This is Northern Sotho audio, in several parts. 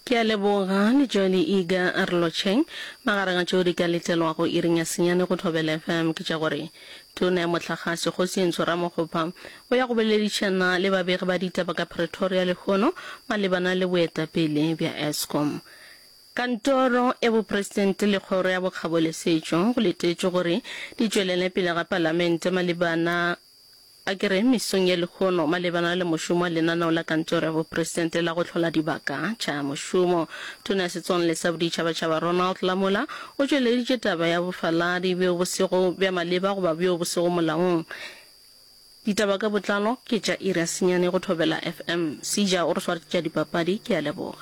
Ke a leboga le Joeli Iga a re lotšheng. Magareng a tšeo di ka letelwago iring ya senyane go Thobela FM ke tša gore Tona ya Mohlagase Kgosi Entsho Ramokgopa o ya go boledišana le babegi ba ditaba ka Pretoria lehono malebana le boetapele bja Eskom. Kantoro ya Bopresidente le Kgoro ya Bokgabo le Setšo go letetšwe gore di tšwelele pele ga Palamente malebana A ke re mesong ye lekhono malebana le mošomo wa lenaneo la Kantoro ya Bopresidente la go hlola dibaka tša mošomo, Tona ya Setswalle sa Boditšhabatšhaba Ronald Lamola o tšweleditše taba ya bofaladi bjo bo sego bja maleba goba bjo bo sego molaong. Ditaba ka botlalo ke tša iri ya senyane go Thobela FM. Sija o re swartša dipapadi. Ke a leboga.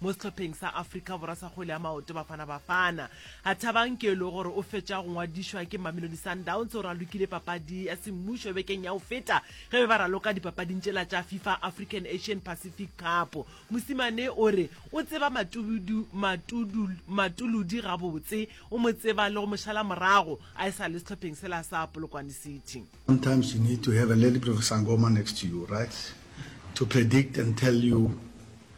mo sehlopheng sa Afrika Borwa sa kgwele ya maoto Bafana Bafana. A Thabang ke le gore o fetša go ngwadišwa ke Mamelodi Sundowns o ralokile papadi ya semmušo bekeng ya go feta ge be ba raloka dipapading tšela tša FIFA African Asian Pacific Cup. Mosimane o re o tseba Matudu, Matudu, Matuludi gabotse, o mo tseba le go mo šala morago a e sa le sehlopheng sela sa Polokwane City. Sometimes you need to have a little bit of sangoma next to you, right? To predict and tell you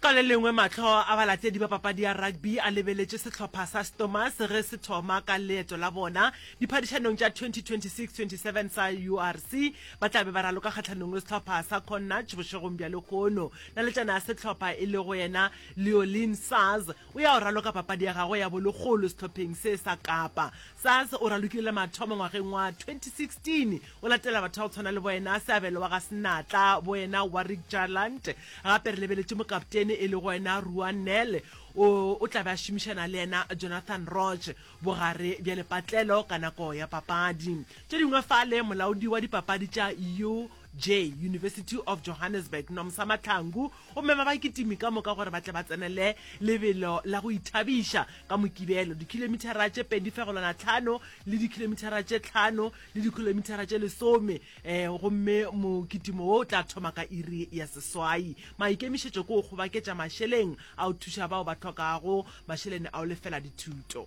Ka le lengwe mahlo a balatedi ba papadi ya rugby a lebeletše sehlopha sa Stormers ge se thoma ka leeto la bona diphadišanong tša 2026-27 sa URC. Ba tla be ba raloka kgahlanong le sehlopha sa Connacht bošegong bja lekhono. Naletšana ya sehlopha e lego yena Leolin Saaz O ya go raloka papadi ya gagwe ya bolekgolo sehlopheng se sa Kapa. Sass o ralokile le mathomo ngwageng wa 2016. O latela batho ba go tshwana le boena seabelo wa ga Senatla, boena Warrick Jarlant, gape re lebeletše mokaptene e lego ena Ruan Nel o o tla be a šomišana le ena Jonathan Roch bogare bja lepatlelo ka nako ya papadi tše dingwe fale. Molaodi wa dipapadi tša UJ, University of Johannesburg, Nomsa Mahlangu, Gomme ba ba kitimi ka moka gore ba tle ba tsenele lebelo la go ithabiša ka Mokibelo, dikhilomithara tše pedi fegolwana tlhano le dikhilomithara tše tlhano le dikhilomithara tše lesome, ee, gomme mokitimo wo o tla thoma ka iri ya seswai. Maikemišetšo ke go kgobaketša mašeleng a go thuša bao ba hlokago mašelene a go lefela dithuto.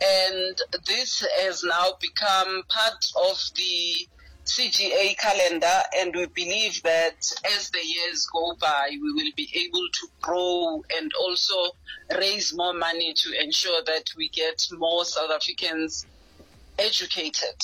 and this has now become part of the CGA calendar and we believe that as the years go by we will be able to grow and also raise more money to ensure that we get more South Africans educated.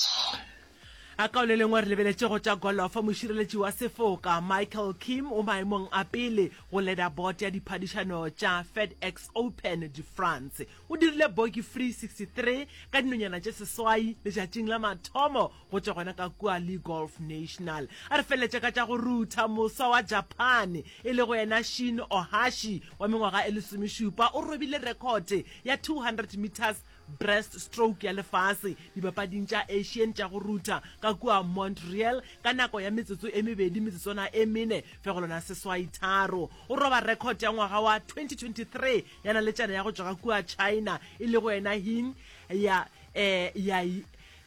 A ka o le lengwe re lebeletše go tša golofo mošireletši wa sefoka Michael Kim o maemong a pele go leda bote ya diphadišano tša FedEx Open de France. O dirile Boki Free 63 ka dinonyana tše seswai letšatšing la mathomo go tšwa gona ka kua Le Golf National. A re feleletša ka tša go rutha moswa wa Japan e lego yena Shin Ohashi wa mengwaga e lesomešupa. O robile rekhote ya 200 metres breast stroke ya lefase Dipapading tša Asian tša go rutha ka kua Montreal ka nako ya metsotso e mebedi metsotswana e mene fegelwana seswai tharo. O roba rekhote ya ngwaga wa 2023 ya naletšana ya go tšwa ga kua china e lego yena hing ya eh, ya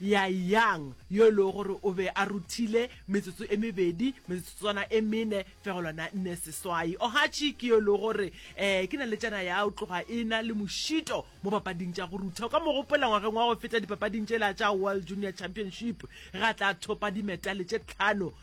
ya yang yo e lego gore o be a ruthile metsotso e mebedi metsotswana e mene fegolwana nne seswai ohachi ke yo e lego gore um ke naletšana ya o tloga e na le mošito mo papading tša go rutha o ka mo gopola ngwageng wa go feta dipapading tšela tša world junior championship ga tla thopa dimetale tše tlhano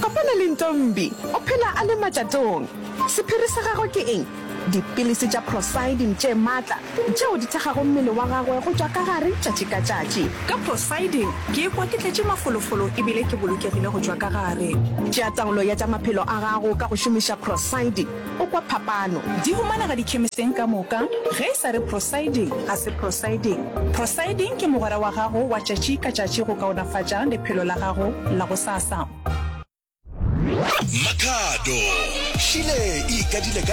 Kopana le Ntombi, o phela a le matšatong. Sephiri sa gagwe ke eng? Dipilisi tša prosidine tše matla tšeo di thekgago mmele wa gagwe go tšwa ka gare tšatši ka tšatši. Ka prosidine ke ikwa ke tletše mafolofolo e bile ke bolokegile go tšwa ka gare. Tšea taolo ya tša maphelo a gago ka go šomiša prosidine. O kwa phapano? Di humanega dikhemiseng ka moka. Ge e sa re prosiding, ga se prosiding. Prosiding ke mogwera wa gago wa tšatši ka tšatši go kaonafatša lephelo la gago la gosasa. Makhado, Šile e ikadile ka.